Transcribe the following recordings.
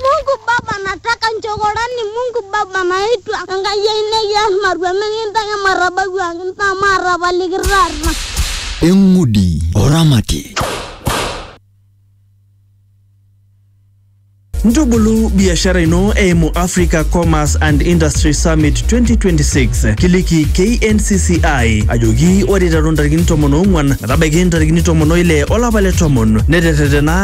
Mungu Baba nataka nchokorani Mungu Baba naitwa Enkai ai nekias matua mikintaki matabau ang naa maatapaliki taata. Eng'udi oramati. Ntubulu biashara ino eimu Africa Commerce and Industry Summit 2026. Kiliki KNCCI ajoki ore iteru ntarikini tomon oong'wan metabaiki ntarikini tomon oile olapa le tomon neterretena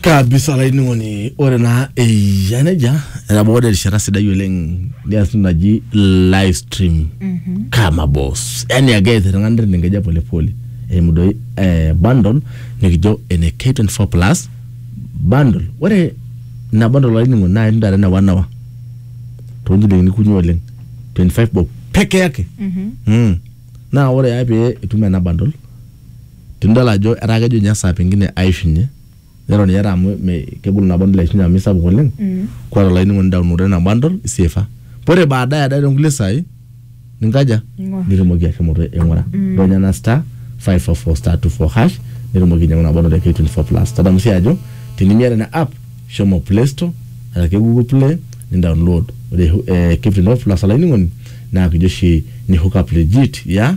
kabisa olainining'oni ore naa eyia nejia etabawua dee erishata sidai oleng nias entoki naji live stream kama boss yani ake ees iltung'anak neton enkeja polepole eimu doi eh, bundle nikijo ene K24 plus bundle ore ina bundle olainining'oni naa itum taata ene one hour tonchilingini kunyik oleng 25 bob peke yake mm. naa ore ake pee itum ena bundle Tenidol ajo etaa kejo ninye esaa pengine aishunye, neton ninye eeta amu me kegol ina bundle aishunye amu isapuk oleng, kuat olainining'oni downloada ina bundle iseefa. Ore baadaye ade too nkulie saai ninkaja? Ning'or. Nitumoki ashomo aing'ura. Ironya ena star, five four four star two four hash nitumoki ainyang'u ina bundle e K24 plus. Tadamu sii ajo tenimiata ina app, shomo play store araki google play nindaonlood. Ore K24 plus olainining'oni naa kijo oshi ni hook up legit yeah.